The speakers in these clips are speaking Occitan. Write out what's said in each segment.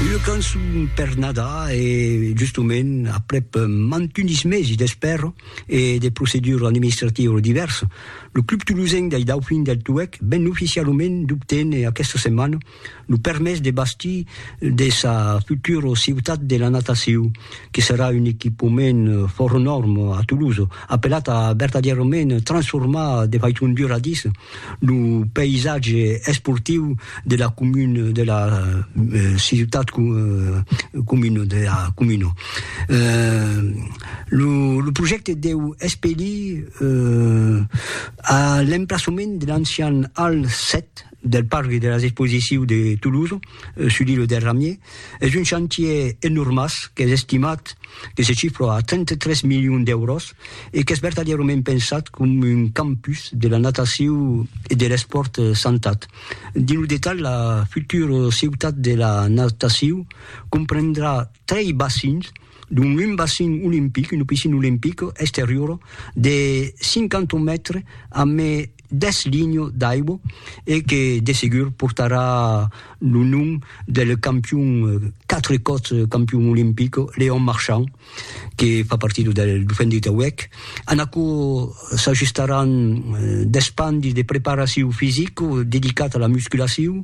Una cançon per Nadar e justement aprèp mantunis mesi d'espèra e de proceduras administrativas divèrsas, lo Club Tolosenc dei Daufins del Tuèlh ven oficialament d'obténer aquesta setmana lo permés de bastir de sa futura Ciutat de la Natacion, que serà un equipament fòrt nòrm a Tolosa, apelat a vertadièrament transformar de faiçon duradissa Lo païsatge esportiu de la comuna de la ciutat comuna de la comuna. Lo lo projècte deu espelir a l'emplaçament de l'ancian Hall 7 del parc de las exposicius de Toulouse, sulí lo Derramier, Es un chantier enormàs qu'es estimat que se chifra a 33 milions d'èuros e qu'es vertadièrament pensat com un campus de la natacion e de l'espòrt santat. Dins lo detalh, la futura ciutat de la natacion comprendrà trei bacins, dont un bacin olimpic, una piscina olimpica exteriora de 50 mètres amé deth linho d'aibo e que de segur portarà lo nom del campion, quatre còps campion olimpic, Léon Marchand, que fa partida del Dauphin de Tauèc. En aquò s'ajustaràn deth pan de preparacion fisica dedicat a la musculacion,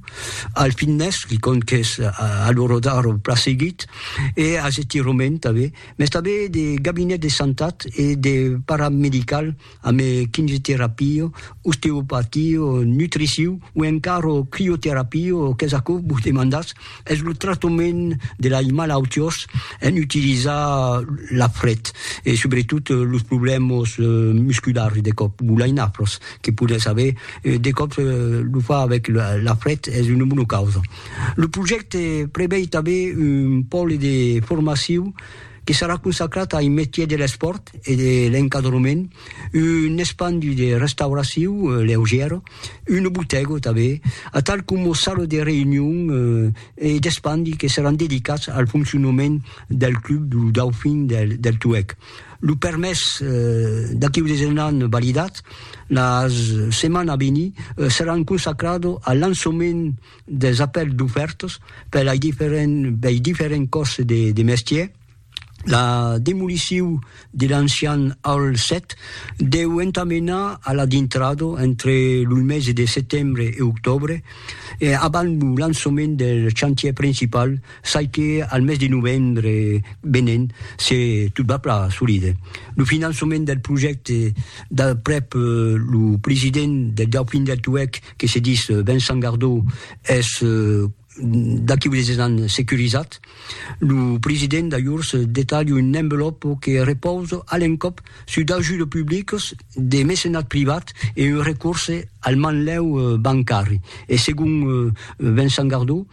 al fitness, que compte qu'es a l'ora d'ara eth plan seguit, e as estirament tanben, mès tanben de gabinet de santat e de paramedical, ame quimioterapio, osteopatio, nutriciu o encara crioterapio qu'es aquò que vos demandatz, es lo tractament de lai malautiós en utilizar la fret e subretot los problèmas musculars de còp o lai nafras que podètz aver, de còp lo far avèc la fret es una bona causa. Lo projècte prevei tanben un pòle de formaciu, que serà consacrat ai metier de l'espòrt e de l'encadrement, un espandi de restauraciu leugièra, una botèga tanben, atal coma sala de reünion e d'espandi que seràn dedicats al foncionament del club du Dauphin del Tuèg. Lo permés d'aqueu desenhan validat, la setmana a venir, seràn consacrado al lançament, des apèls d'ofèrtas per lei diferents bei diferents còrses de de mestièr la demoliciu de l'ancian Hall 7 deu entamenar a la dintrada entre lo mesi de setembre e octòbre e abans lo lançament del chantièr principal çai que al mes de novembre venent se tot va plan solide lo finançament del projècte d'aprèp lo president del Dauphin del Tuèlh que se dis Vincent Gardó es d'aquí unes 10 ans securizat, lo president d'ajors detalha un envelòpo que repausa a l'encòp sus d'ajudes publicas, de mecenat privat e un recorse al manlèu bancari. E segon Vincent Gardó,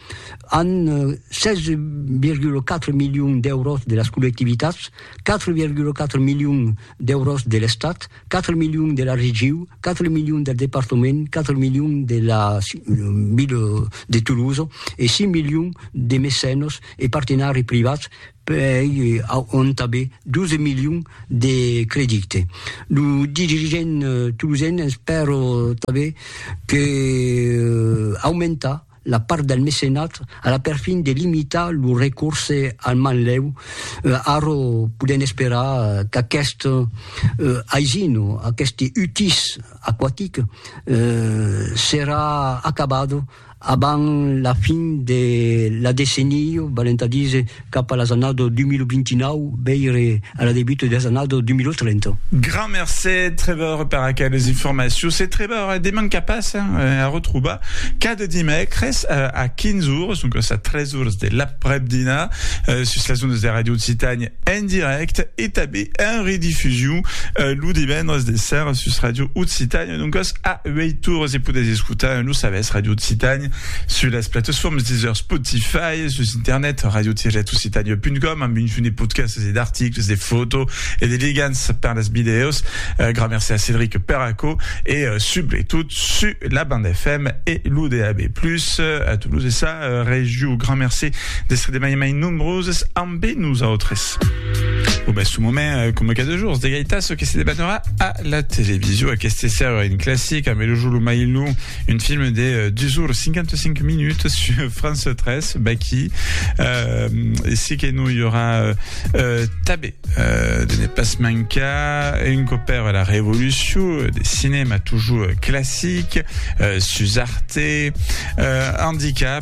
an 16,4 milions d'èuros de las collectivitats, 4,4 milions d'èuros de l'Estat, 4 milions de la regiu, 4 milions del departament, 4 milions de la ville de Toulouse e 6 milions de mecenos e partenari privats pei auntabe 12 milions de credite. Lo dirigent toulousen espèro tanben que aumentar la part del mecenat a la perfin de limitar lo recorse al manlèu, ara podèm esperar qu'aquest aisin o aqueste utís aquatic serà acabat abans la fin de la decennia, valent a díser cap a las annadas 2029, veire a la debut de las annadas 2030. Grand mercé Trevor per aqueles informacions. Se Trevor es deman qu'a passa a retrobar cada dimècres a 15 ores, doncas a 3 ores de l'aprèp-dinar, sus las ondas de Radio Occitània en dirècte e tanben en redifusion lo divendres de sèra sus Radio Occitània. E doncas, a uèi torres e podètz escotar en lo sabèth Ràdio Occitània sus las platesformes Deezer, Spotify, sus internet radio-occitania.com amb un junt de podcasts e d'articles, de foto e de ligants per las vidèos. Gran merci a Cédric per aquò e subretot sus la banda FM e lo DAB+, a Toulouse e sa regió. Gran merci d'èstre de mai en mai nombroses ambe nosautres. Au mai su moment, coma cada jorns, de gaitas que se debanarà a La television, aqueste ser un classic, amb Elojo lo mai long, un film de 2 ores 55 minuts sur France 3, Baki. Euh, e si que non i aurà euh, tabé euh, de ne pas mancar un copèr a la revolucion de cinema toujours classic, euh, sus Arte, euh, handicap,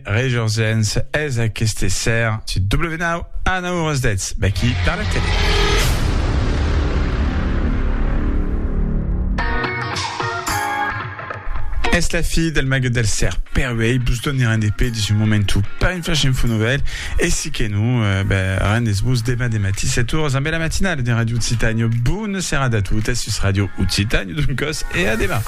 Rejorzens es aqueste ser su W9 a 9 oras 10, vèqui per la tele. Es la fi del mague del ser, per uei bus donirem de pe de su momentu per un flash info novel e si que non, eh, ben, rendes bus deman de matí 7 oras amb la matinale de Radio Occitània. Bona serada a totes sus Radio Occitània, doncòs, e a deman.